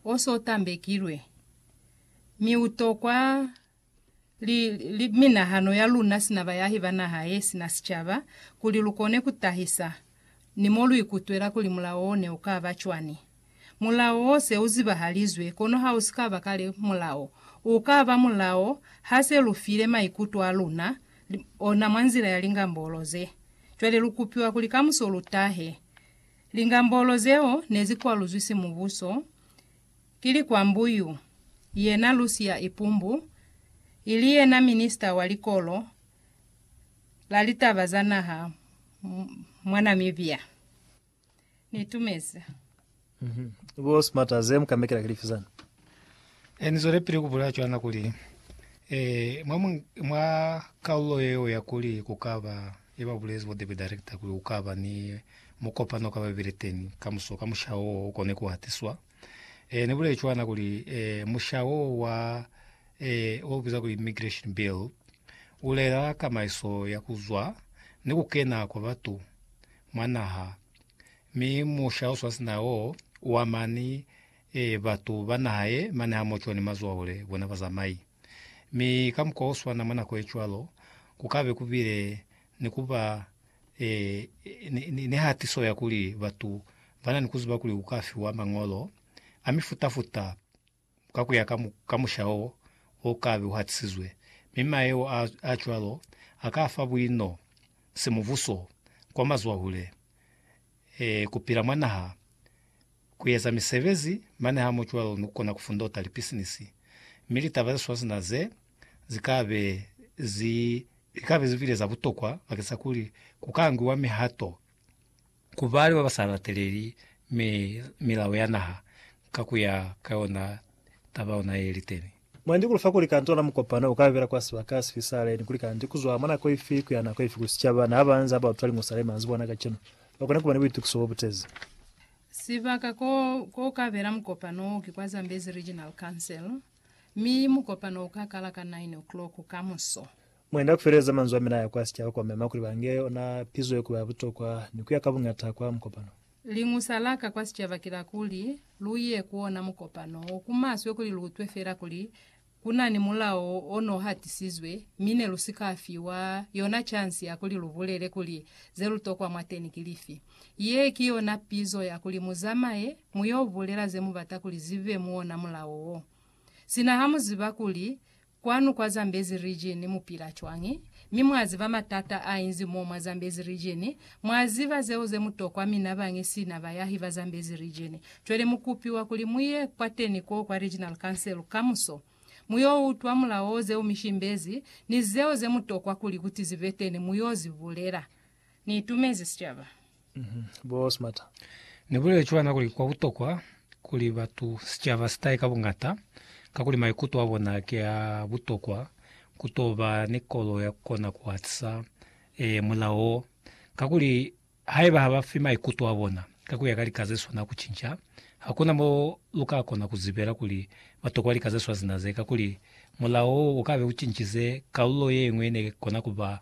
o so tambekilwe, mi u tokwa li, li, minahano ya luna sina bayahi ba naha ye sina sicaba, kuli lu kone ku tahisa ni mo lu ikutwela kuli mulao wo ne u ka ba cwani. Mulao wo se u zibahalizwe, kono ha u si ka ba kale mulao. U ka ba mulao ha se lu file maikuto a luna ona mwa nzila ya lingambolo ze. Cwale lu kupiwa kuli kamuso lu tahe. Lingambolo zeo nezikwaluzwi simubuso ki likwambu yu yena Lucia Ipumbu, ili yena Minista wa Likolo la Litaba za Naha mwa Namibia. Niitumeza. Bo Smarter, ze mu ka mekela ki lifi zani? E Ni zwelepili ku bulela cwana kuli, e, mwa, mwa kaulo yeo ya kuli ku ka ba Ne ba bulezi bo Debe Director kuli ku ka ba ni mukopano ka babeli teñi kamuso ka mushaho wo u kone ku hatiswa. E ne buleli cwana kuli, e, mushaho wo wa, e, wo bizwa kuli Immigration Bill, u lela kamaiso ya ku zwa ni ku kena kwa batu mwa naha, mi musha o swasina wo u ama ni, e, batu ba naha ye mane hamoco ni mazwaole bona bazamai. Mi ka mukwa oswana mwa nako yecwalo, kukabe kubile ni kuba e, ni, ni, ni hatiso ya kuli batu bana ni kuziba kuli kuka fiwa mañolo a mifuta-futa ka kuya ka, mu, ka musha o, o kabe uhatisizwe. Mi mayeo a, a cwalo aka fa buino semubuso kwa mazwahule. e, ku pila mwa naha, ku eza misebezi, mane ha mu cwalo ni ku kona ku fundota lipisinisi. Mi litaba ze swana sina ze, zi ka be zi. Li ka be zi bile za butokwa bakeng sa kuli ku ka ngiwa mihato ku bali ba ba sa lateleli milao ya naha ka ku ya ka yona taba ona ye li teni. Mwendi kuli fa kuli kantu ona mukopano uka bela kwa sibaka sifi sa leni kuli kanti kuzwa mwa nako ifi kuya nako ifi ku sicaba na ba nza ba utwa liñusa le manzibwa ona kacenu ba kone kuba ni buitukiso bo butezi. Sibaka ko ko ka bela mukopano o ki kwa Zambezi Regional Council, mi mukopano uka kala ka 9 o'clock kamuso. Mwendi aku feleza manzwi amina aya kwa sicaba kwa mema kuli ba nge ona pizo ye kuba ya butokwa ni kuya ka buñata kwa mukopano. Liñusa laka kwa sicaba kilakuli, luye ku ona mukopano wo ku maswe kuli luutwe fela kuli kunani mulao ono hatisizwe, mi ne lusika fiwa yona chansi ya kuli lubulele kuli zelutokwa mwateni ki lifi. Ye ki yona pizo ya kuli muzamaye muyo bulela zemubata kuli zibe muona mulao wo. Sina hamuziba kuli Kwanu kwa Zambezi Region mu pila cwañi, mi mwa ziba matata a inzi mo mwa Zambezi Region? Mwa ziba zeo ze mu tokwa mina bañi sina bayahi ba Zambezi Region. Cwale mu kupiwa kuli mu ye kwateni ko kwa Regional Council kamuso. Mu yo utwa mulao zeo mi shimbezi, ni zeo ze mu tokwa kuli kuti zibeteni mu yo zi bulela. Ni itumezi sicaba. Bo Smarter. Ni bulele cwana kuli kwa butokwa kuli batu, sicaba si tahe ka buñata, kakuli maikuto a bona ki a butokwa ku to ba ni kolo ya ku kona ku hatisa, ee, mulao wo. Kakuli, haiba ha ba fi maikuto a bona ka ku ya ka lika ze swana ku cinca, hakuna mo lu ka kona ku zibela kuli ba tokwa lika ze swazina ze, kakuli mulao wo u ka be u cincize kalulo ye ñwi ne kona ku ba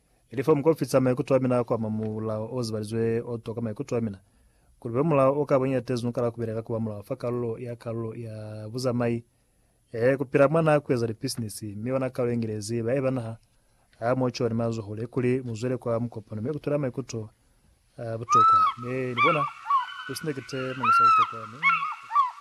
Ilif'o muk'ofisa maikuto amina a kuama mulao o zibalizwe o toka maikuto amina. Kuli kube mulao o ka boñi ya tezu nukala kubeleka kuba mulao fa kalulo ya kalulo ya buzamai, ee, kupila mwa naha, kueza lipisinisi, mi ona kalulo yengilezi ba eba naha, aa, mo co ni mazoho, le kuli muzwele kwa mukopano mi kutwela maikuto a butokwa. Mi, nibona, kusina kite, mangisi a butokwa, mi kutwela.